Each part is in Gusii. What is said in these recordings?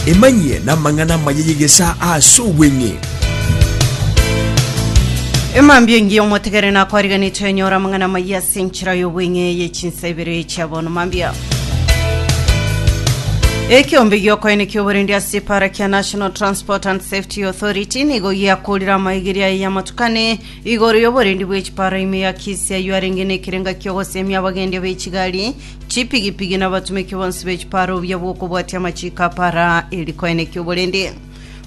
Emanyie namang'ana amaya y'egesaa aase obweng'e. Emambia engiya omotegere nakwariganetwe enyora amang'ana amaya ase enchera y'obweng'e ye chinsa ibere chia bono mambia. Ekiombe giokoene kioborendi ase epara kia National Transport and Safety Authority nigo giakorire amaigeria aye y'amatukane igoro y'oborendi bw'echipara ime ya Kisii ayio arenge nekerenga kiogosemia abagendi b'echigari Chipigipigi na abatumeki bonsi be chipara obuya bw'okobwatia amachiiko a para eri koeneki oborende.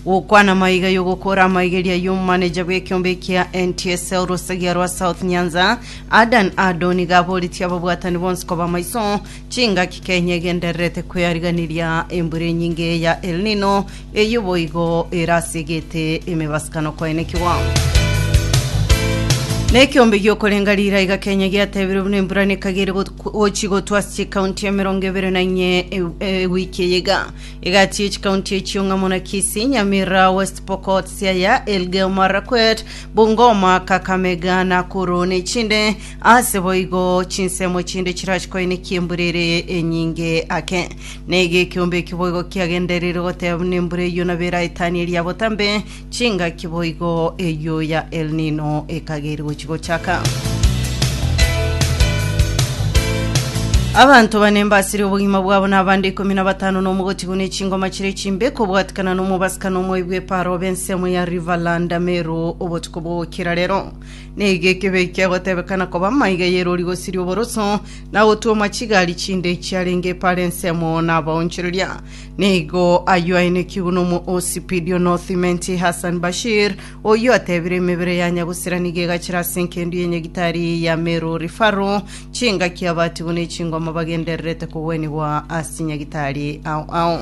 Gokwana amaiga y'ogokora amaigeria y'omomaneja bw'ekiombe ekia NTSL Rosagia rwa South Nyanza, Adan Ado niga aboretie ababwatani bonsi koba amaiso chingaki Kenya egendererete kweariganiria embura enyinge ya El Nino Eyio boigo ere ase egete emebasikano kwaenekigwa. Na ekiombe giokorenga rira iga Kenya giatebirwe buna embura nekaga ere got- gochi gotwa ase chikaunti emerongo ebere na inye ew- ewiki eye iga egatiye chikaunti echio ng'a muna Kisii, Nyamira, West Pokot, Siaya, Elgeyo Marakwet, Bungoma, Kakamega, Nakuru na echinde ase boigo chinsemo chinde chirachi koenekia embura ere enyinge ake. Naiga ekeombe ekio boigo kiagendereire goteeba buna embura eyio na bera etani eria botambe, chingaki boigo eyio ya El Nino ekageire gochia gochaka. Abanto bane mbasire obogima bwabo na abande ikomi na batano na omogotigu ne chingoma chire chimbe kobwatikana na omobasika na omoibi bw'epaaro obe ensemo ya Riverland Ameru obotuko bw'ogokira rero. Naiga ekebe eki kiagotebekana koba amaiga y'erori gosiria oboroso, na gotwoma chigari chinde chiarenge epara ensemo nabaonchoreria. Nigo ayio ainekigwe nomosipidio nothimenti Hassan Bashir, oyio atebire emebere ya nyagusera nigo egachera ase enkendu ye nyagitari ya Meru Rifaru, chingaki abatigwe ne chingoma bagendererete kogwenigwa ase nyagitari ao ao.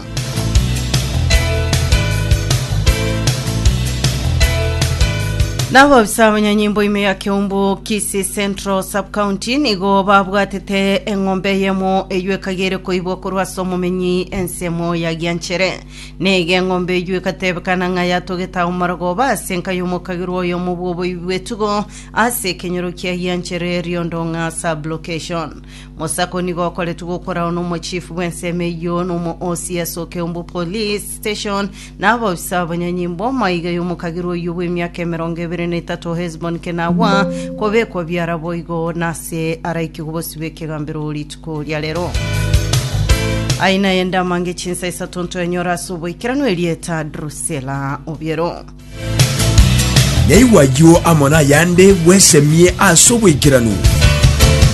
Nabobisa abanyanyimbo ime ya Kiumbu Kisii Central Sub-County nigo babwatete eng'ombe eyemo eyio ekagere koibwa korwa ase omomenyi ensemo ya Gianchere. Nigo eng'ombe eyio egatebekana ng'a yatogete agwo Marogoba ase enka y'omokagirwa oyomo bw'oboibi bw'etugo ase ekenyoro kia Gianchere Riondong'a Sub-Location. Mosako nigo okoretwe gokorao n'omochifu bw'ensemo eyio, na omoosi ase Okeumbu Police Station, na abaofisa abanyonyi b'omaiga y'omokagera oyio bw'emiaka emerongo ebere na etato Hesbon Kenagwa, kobekwa biara boigo, na ase araikigwe bosio bw'ekegambero rituko ria rero. Aina eye ndamange chinsa isato ntoenyora ase oboikeranu erieta Drusela Obiero. Naigwa ayio amo nayande bwesemie ase oboikeranu.